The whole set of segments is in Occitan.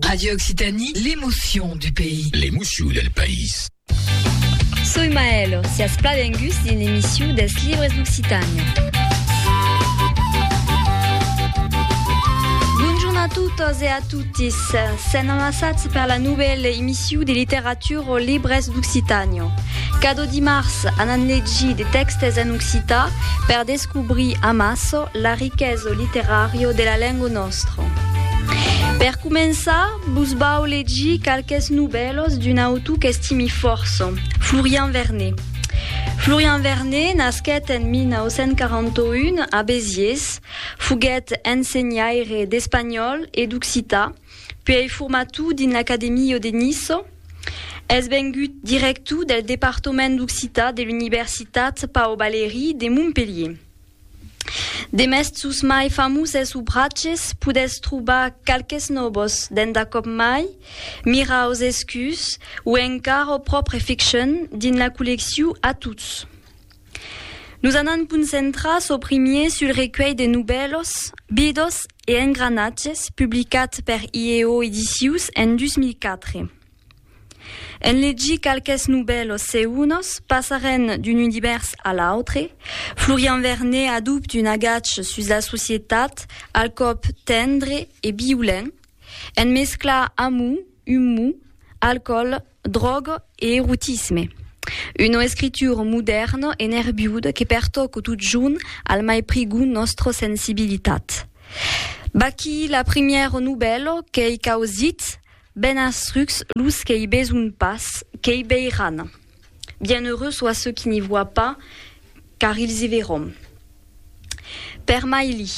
Radio Occitanie, l'emotion du pays. L'emotion del país. Soi Maëlle, siatz plan venguts dins l'emission dels libres d'Occitània. a totes e a totis. Sen amassats per la nouvelle émission de littérature aux libres d'Occitània. Cada dimarts, anant legir de textes en occitan per Descobri amasso la riqueso literario de la lengo nostro. Per començar, vos vau legir qualques novèlos d'un autor qu'estimi fòrça, Florian Vernet. Florian Vernet nasquèt en 1941 a Besiers, foguèt ensenhaire d'espanhòl e d'occitan, Puèi formatou dins l'Academio de Niço, es vengut directou del departament d'occitan de l'Universitat Pau Valéry de Montpelhier. Demest sos mai famoses obraches podètz trobar qualques nòbos dens d'a còp mai miraus escus o encara o pròpre ficcion dins la collecciu Atuts. Nos anam concentrar çò primier sul recuelh de novèlos, bidos e engranatges publicat per IEO Edicius en 2004. En legir qualques novèlos seunos, passarem d'un univèrs a l'autre, Florian Vernet adopte un agatge sus la societat al còp tendre e violent, en mesclar amor, umor, alcòl, dròga e erotisme. Una escritura modèrna e nerviuda que pertòca totjorn al mai prigon nòstra sensibilitat. Vaquí la primièra novèla qu'ei causit, Ben astrucs los que i beson pas, qu'i veiràn. Bienheureux sois ceux qui n'y voient pas, car ils y verront. Per mai li.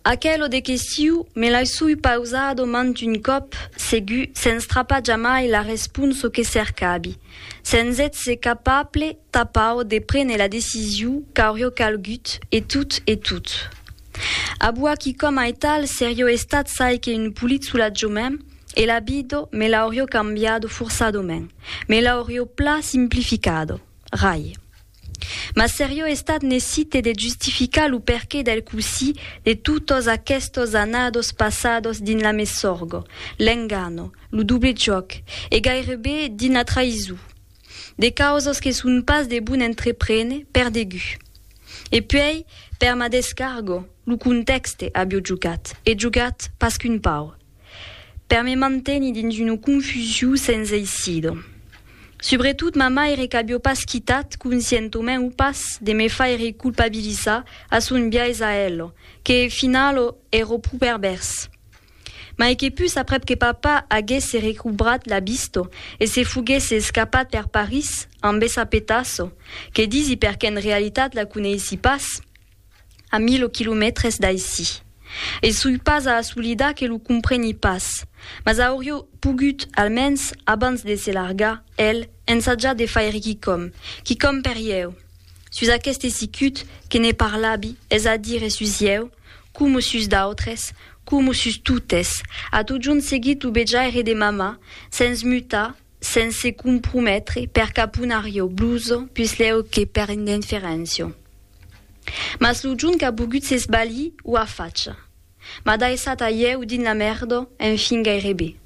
Aquelo de que siu, me l'ai sui pausado mant un còp, segur, sens trapar jamai la responso que cercavi, sens ètser capable tapau de prene la decisiu qu'aurió calgut, e tot, e tot. Abua qui com aital serió estat çai que un polit solatjo mèn, e la bido me l'aurió cambiado forçadament, me l'aurió pla simplificado. Rai. Mas seriò estat necite de justificar lo perqué del cosí de totos aquestos annados passados dins la mesorgo, l'engano, lo doble jòc e gairebe dins la traïson. De causos que son pas de bon entreprene per degut. E puèi, per ma descargo, lo contèxte avió jogat, e jogat pas qu'un pauc. per me mantenir dins una confusion sens eissida. Subretot ma maire qu'avió pas quitat conscientament o pas de me faire culpabilizar a son biais a ela, que e finala èra pro pervèrs. Mai que pus aprèp que papa aguèsse recobrat la vista e se foguèsse escapat per París amb essa petassa, que disi perque'n realitat la coneissi pas, a mil o quilomètres d'aicí. E soi pas a assolidar que lo compreni pas, mas aurió pogut, almens, abans de se largar, el, ensajar de faire quicòm, quicòm per ieu, sus aqueste sicut que ne parlabi, es a dire sus ieu, coma sus d'autres, coma sus totes, a totjorn seguit lo bejaire de mamà, sens mutar, sens se comprometre per cap un arriò, bluso, puslèu que per indinferéncia. Mas lo junt qu'a bogut s'esbalir ua facha. M'a daissat a ieu dins la mèrda, enfin gairebe.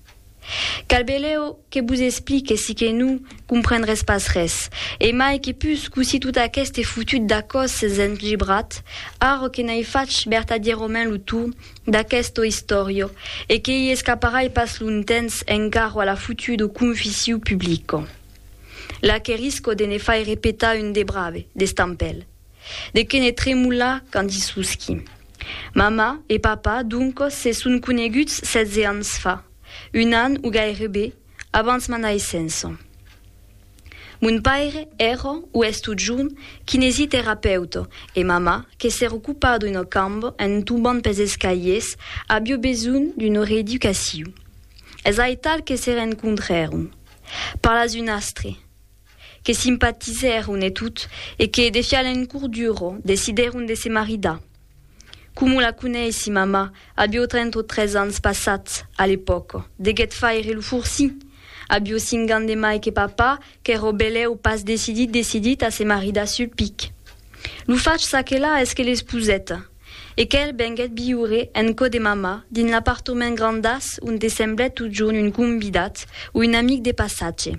Cal beleu que vos explique si que non comprendrètz pas res. E mai que pus, cossí tot aqueste fotut dacòs s'es engebrat, ara que n'ai fach vertadièrament lo torn d'aquesta istòria e que i escaparai pas longtemps encara a la fotuda confission publica. Là que risco de ne faire petar un de brave, d'estampèl. De que ne tremolar quand i susqui. Mamà e papà, doncos, se son coneguts setze ans fa, un an o gairebe abans ma naissença. Mon paire èra o es totjorn kinesiterapeuta e mamà que se recopa d'una camba en tombant pes escaliers avió besonh d'una reeducacion. Es aital que se rencontrèron. Parlas un astre. Que simpatizèron e tot, e que, de fial en cour duro, decidèron de se maridar. Coma la coneissi, mamà, avió trenta o tres ans passats, a l'epòca, deguèt faire lo forci! Avió cinc ans de mai que papà, qu'èra belèu pas decidit decidit a se maridar sul pic. Lo fach çaquelà es que l'esposèt. e qu'el venguèt viure en cò de mamà dins l'apartament grandàs onde semblèt totjorn un convidat o un amic de passatge.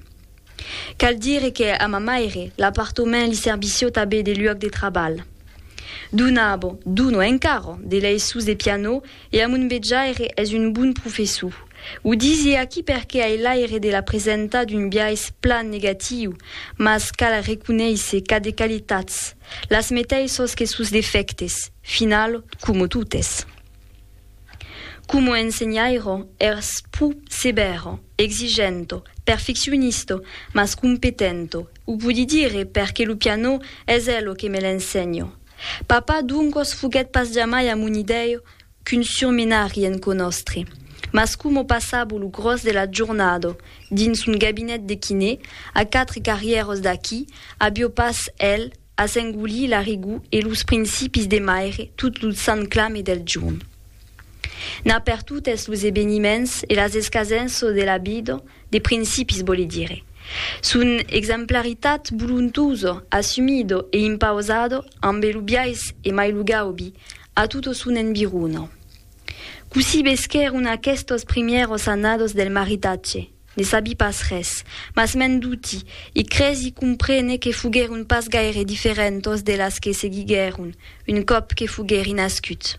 Cal dire que a ma maire l'apartament li servissió tabé de luòc de trabalh. Donàvo, dono encara, de leisons de pianò e a mon vejaire es un bon professor. O disi aquí perque ai l'aire de la presentar d'un biais plan negatiu, mas cal reconéisser qu'a de qualitats. Las meteissos que sos defèctes, final, como totes. Como ensenhairo, ers pus sevèro, exigento, perfeccionisto, mas competento, o podi dire perque lo pianò es elo que me l'ensenho. Papà, doncos, foguèt pas jamai amonidèio qu'un surmenari en cò nòstre. Mas coma passavo lo gròs de la jornada dins un gabinet de quiné, a quatre carrièras d'aquí, avió pas hèl a s'engolir la rigor e los principis de maire tot lo sant clame del jorn. N'a per totes los eveniments e las escasenças de la vida de principis vòle dire, son exemplaritat volontosa, assumida e impausada ambe lo biais e mai lo gaubi, A tota son environa. Cossí vesquèron aquestos primièros annados del maritatge? Ne sabi pas res, mas m'en duti, e cresi comprene que foguèron pas gaire diferentos de las que seguiguèron un còp que foguèri nascut.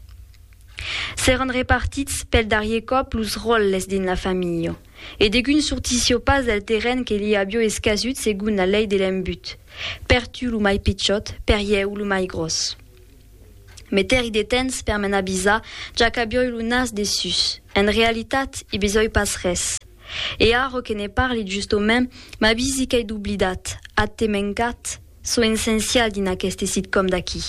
S'èran repartits pel darrier còp los ròtles dins la familha, e degun sortissió pas del terren que li avió escasut segon la lei de l'embut, per tu lo mai pichòt, per ieu lo mai gròs. Meter-i de temps per me'n avisar, ja qu'avioi lo nas dessús. En realitat, i besoi pas res. E ara que ne parli justaument, m'avisi qu'ai doblidat, ath te mencat, çò essencial dins aqueste sitcom d'aqui.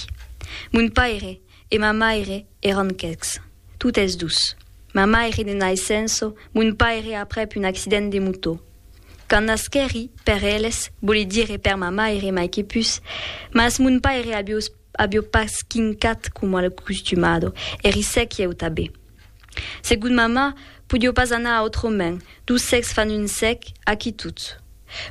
Mon paire e ma maire èran quecs. Totes dus. Ma maire de naissença, mon paire aprèp un accident de motò. Quand nasquèri, per eles, voli dire per ma maire mai que pus, mas mon paire aviós Avió pas quincat coma al custumado, e risec ieu tabé. Segon mamà, podió pas anar autrament, dos sècs fan un sèc, aquí tot.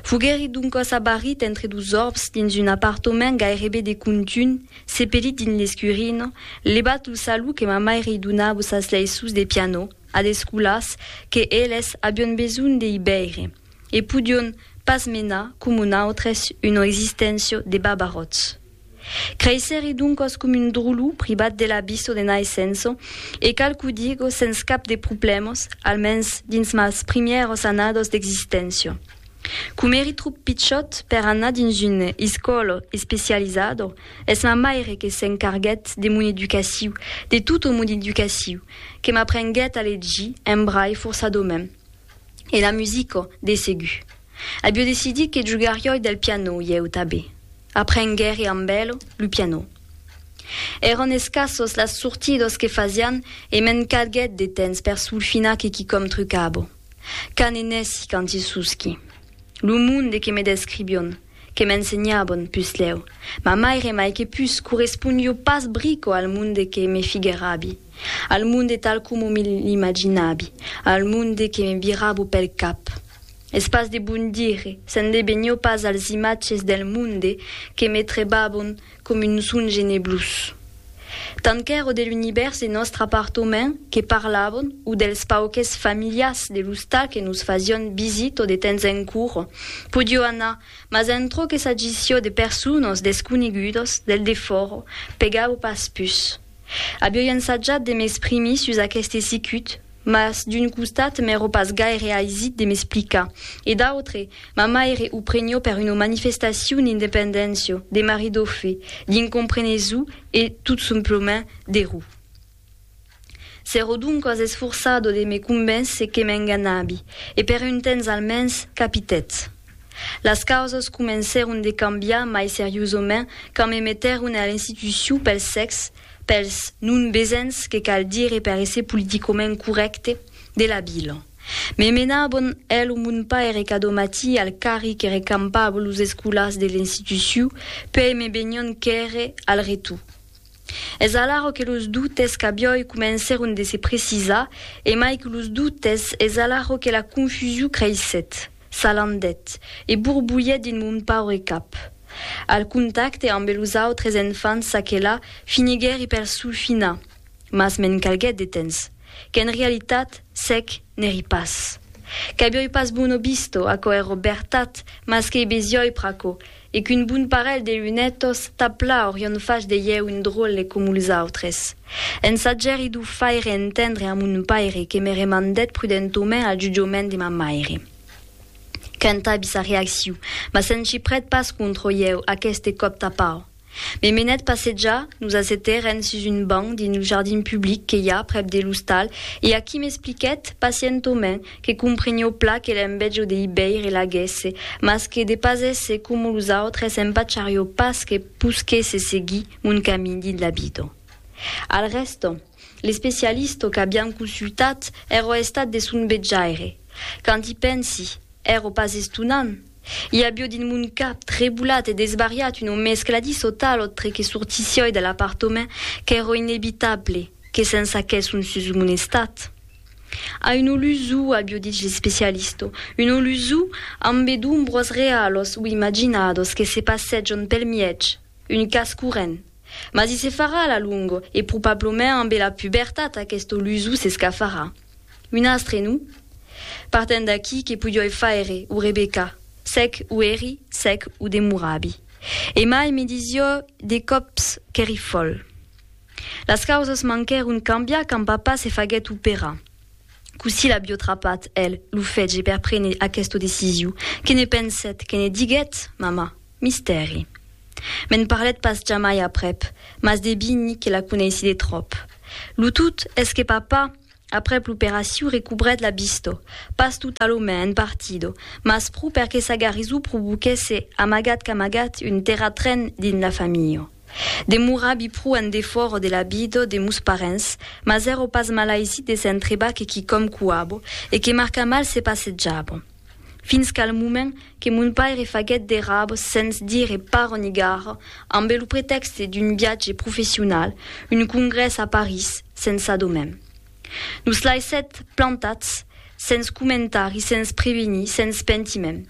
Foguèri doncòs abarrit entre dos òrbs dins un apartament gairebe de contunh, sepelit dins l'escurina, levat lo salut que ma maire i donava sas leiços de pianò ad escolars que eles avión besonh de i veire, e podión pas menar, coma nòutres, una existéncia de babaròts. Creissèri doncas com un drolu pribat de la biso de naissenço, e cal qu'o digo sens cap de problèmas, almens dins mas primièras annadas d'existéncia. Com èri tròp pichòt per anar dins una escòla especializada, es ma maire que s'encarguèt de mon educaciu, de tota mon educaciu, que m'aprenguèt a legir en brai forçadament, e la musica, de segur. Abio decidit que jogarioi del piano ieu tabé. Aprenguère amb elo lo piano. Èron escassos las sortidos que fasián e me'n cadguèt de temps per solfinar que quicòm trucabo. Qu'a ne nèssi quanti susqui. Lo monde que me describion, que m'ensenhabon, puslèu, ma maire mai que pus correspondio pas brico al monde que me figuèrabi. Al monde tal coma me l'imaginabi, al monde que me virabo pel cap. Es pas de bon dire, se'n debenhó pas als imatges del monde que me trebabon com un songe neblós. Tant qu'èro de l'univèrs de nòstre apartament que parlabon o dels pauques familiars de l'ostal que nos fasión visito de temps en cura, podió anar, mas en çò que s'agissió de personas desconegudas del defòra, pegabo pas pus. Avioi ensajat de m'exprimir sus aqueste sicut, mas d'un costat m'èro pas gaire aisit de m'explicar, e d'autre, ma maire o prenió per una manifestacion d'independéncia, de maridofe, d'incomprenesu e, tot somplament, de ro. S'èro doncas esforçado de me convéncer que m'enganavi, e per un temps almens, capitètz. Las causas comencèron de cambiar mai seriosament quand me metèron a l'institucion pel sèx, pels non besens que cal dire per èsser politicament corrècte, de la vila. Me menabon el o mon paire cada matí al carri que recampava los escolars de l'institucion, puèi me venion quèrre al retorn. Es alara que los doutes qu'a biòi comencèron de se precisar, e mai que los doutes, es alara que la confusion creissèt, s'alandèt e borbulhèt dins mon paure cap. Al contacte ambe los autres enfants çaquelà finiguèri per sulfinar, mas me'n calguèt de temps, qu'en realitat s'èc n'èri pas. Qu'abiòi pas bono bisto, aquò èro bertat, mas qu'ei besiòi pr'aquò, E qu'un bon parelh de lunetos tà pla aurion fach de ieu un dròlle com los autres. En sagèri d'o faire entendre a mon paire que me remandèt prudentaument al jutjament de ma maire. Quant abi sa reacciu, mas se'n chiprèt pas contra ieu aqueste còp tà pau. Me menèt passejar, nos assetèrem sus un banc dins lo jardin public que i a prèp de l'ostal e aquí m'expliquèt, pacientaument, que comprenió pla que l'envejo de Ibèire l'aguèsse, mas que de pas èsser coma los autres empacharió pas que posquèsse seguir mon camin dins la vida. Al rèsta, l'especialista qu'aviam consultat èra estat de son vejaire. Quand i pensi, èra pas estonant! I avió dins mon cap, trebolat e desvariat, una mescladissa tal autre que sortissioi de l'apartament qu'èra inevitable, Que se'n saquèsse un sus mon estat. A un olusù, abiò dich l'especialisto, un olusù ambe d'ombros realos o imaginados que se passèjon pel mièg, un cas corrent. Mas i se farà a la longo, e probablament ambe la pubertat aquest olusù s'escafarà. Un astre, non? Partent d'aquí, que podioi faire, o Rebecca? Sec o eri, sec o demorabi. E mai me disiò de còps qu'eri fòl. Las causas manquèron cambiar quand papa se faguèt operar. Cossí l'avió trapat, el, lo fetge per prene aquesta decisiu? Que ne pensèt? Que ne diguèt? Mamà? Mistèri. Me'n parlèt pas jamai aprèp, mas debini que la coneissi de tròp. Lo tot es que papa, aprèp l'operaciu, recobrèt la vista, pas totalament, en partida, mas pro per que sa garisó provoquèsse, amagat qu'amagat, un terratren dins la familha. Demorabi pro en defòra de la vida de mos parents, mas èra pas malaisit de s'entrebar que quicòm cuabo e que marca mal se passejava. Fins qu'al moment que mon paire faguèt de rabs sens dire para ni gara ambe lo pretèxte d'un viatge professional, un congrès a París, sensa domen. Nos laissèt plantats, sens comentar e sens prevenir, sens pentiment.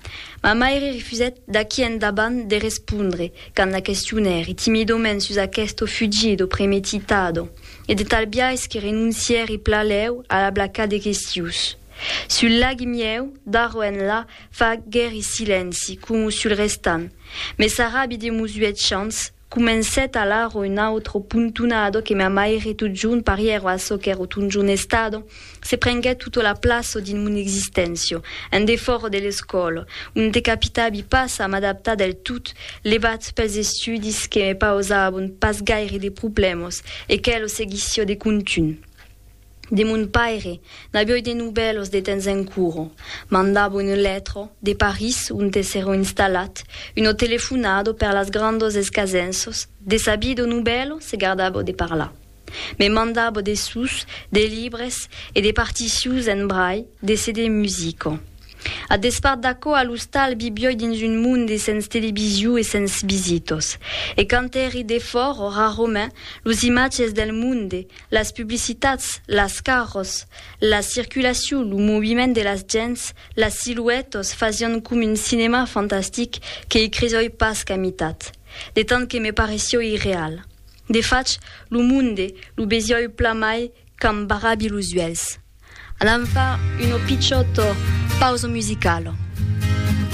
Ma maire refusèt d'aqui endavant de respondre quand la questionèri timidament sus aquesto fugido premetitado e de tal biais que renoncièri plaléu a la blaca de questius. Sul lagi mieu, d'aro enlà, faguèri silenci, coma sul restant. Mes arabi demosuèt chants, Comencèt alara un autro pontonado que ma maire totjorn parièro a çò qu'èro totjorn estado, se prenguèt tota la plaça dins mon existéncia, en defòra de l'escòla, onte capitavi pas a m'adaptar del tot, levat pels estudis que me pausavon pas gaire de problèmas, e que lo seguissiá de contunh. De mon paire n'avioi de nubèlos de temps en curo. Mandavo un lètro de París onte s'èro installat, uno telefonado per las grandos escasenços de sabido nubèlo se gardavo de parlar. Me mandavo de sus, de libres e de particions en brai de CD musico. A despart d'aquò a l'ostal vivioi dins un monde sens televisiu e sens visitos. E quand èri defòro raromèn los imatges del monde Las publicitats, las carros, la circulacion, lo moviment de las gents, las siluètas fasián com un cinèma fantastic que i cresoi pas qu'a mitat, de tant que me parecioi irreal. De fach, lo monde lo vesioi plan mai qu'am barrabi los uèlhs. Anam far una pichòta pausa musicala.